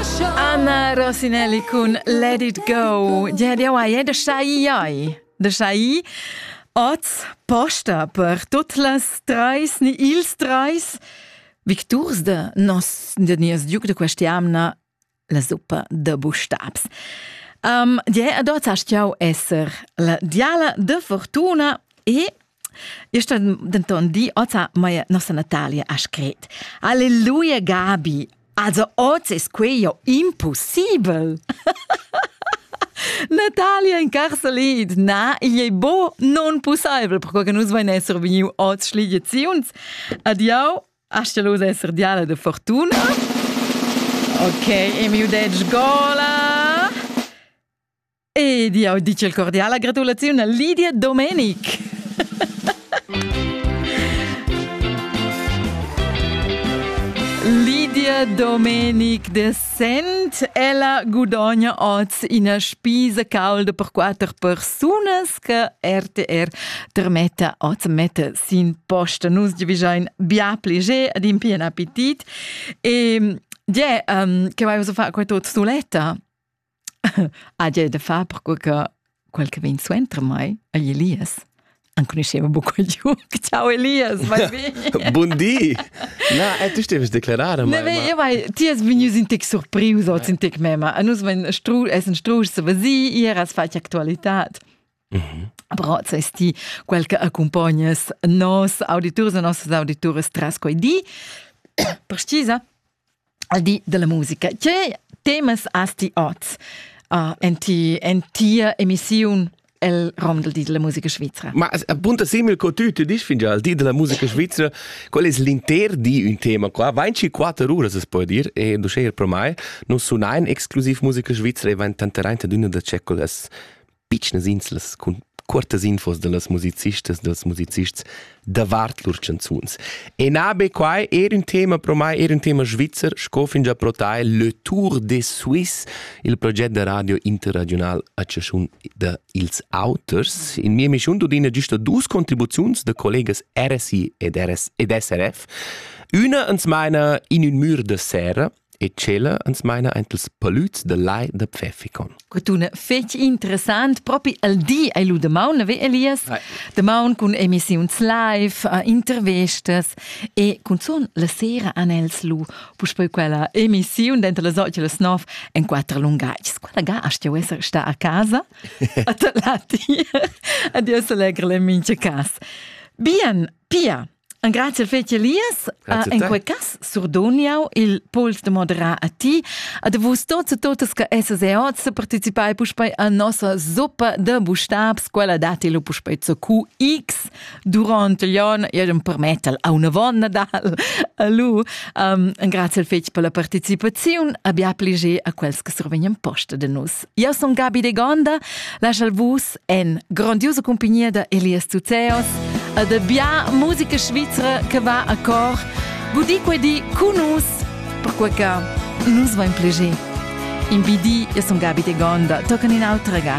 Anna Rosinelli cun Let It Go. Ja, jau hai da schai iai. Da schai oz posta per tut las treis ni ils treis victurs de nos de nies duc de questiamna la suppa de bustabs. Um, die adot hast jau esser la diala de fortuna e Ista denton di ota mai nossa Natalia ha scret. Alleluia Gabi, also oz es quei jo impossibel. Natalia in carcelid, na, igl ei bo non possibel, perquei che nus vein esser vegniu oz schligiaziuns. Adiau, astelos esser diala de fortuna. Ok, e mi udetg gola. Ed jau dice il cordiala gratulaziun a Lidia Domenic. Lydia Domenic de Sent, ella gudogna oz ina spisa calda per quatter persunas che RTR termetta oz metta sin posta. Nus giavischein bia plaisir ad in bien appetit. E yeah, um, che vai a fare questa suletta? Hagi da far perque che quel che vegn suenter mei ei Elias. Enconuscheva buca Jug. Ciao Elias, vai bene. Bun di. Na, eh, tu steves declarada mai. Ne, io vai, ti es vegnius in tec surprius oz in tec mema. A nus vein stru, essen strusch se vesi, ier has fatg actualitad. Però ses ti quel che accumpognas nos auditurs e nossas auditures tras quei di, precisa, al di della musica. Che temas has ti oz uh, en, ti, en tia emissiun el rom del di della musica svizzera. Ma appunto simil co tu tu dici fingià al di della musica svizzera, qual es l'inter di un tema qua, vain ci quatter uras es po dir e du scheir pro mai, nun sunain exclusiv musica svizzera e vain tanteraint ad üna da ceccolas pitschnas inslas cun cuortas infos dallas musicistas dals musicists davart lur canzuns. E na be quai, er un tema pro mai, er un tema svizzer, sco fin già protai Le Tour des Suisses, il proget da radio interregional a chaschun da ils auters. In mia mischun tudina giusta dus contribuziuns da collegas RSI ed, RS ed SRF. Üna ans maina in ün mür da sera, e tschella ans maina aint ils palüds da lai da Pfäffikon. Que tuna fetg interessant. Propi al di ei lu damaun, ve Elias? Vai. Damaun cun emissiuns live, uh, intervistas e cunzun la sera han els lu puspei quella emissiun denter las 8 e las 9 en quatter lungatgs. Quella ga hast ti esser sta a casa, a ta lati, adios allegra le mincha cas. Bien, Pia, Grazie fece Elias. Uh, in quei cas surdoniau il pols de moderar a ti. A de vus tots e totas che esses e oz se participai puspei a nossa zoppa de bustabs, quella dati lo puspei zu QX durante l'on, iam permettel a una vonna dal. Allu, um, grazie fece per la participazione, abbiamo plige a quels che survegnan posta de nus. Io son Gabi de Gonda, laschal vus en grandiosa compagnia da Elias Tuzeos e de bia musica svizra che va a cor. Gudi quei di cu nus, perquei che nus vain plegé. In bidi, io son Gabi de Gonda, tocan in autra ga.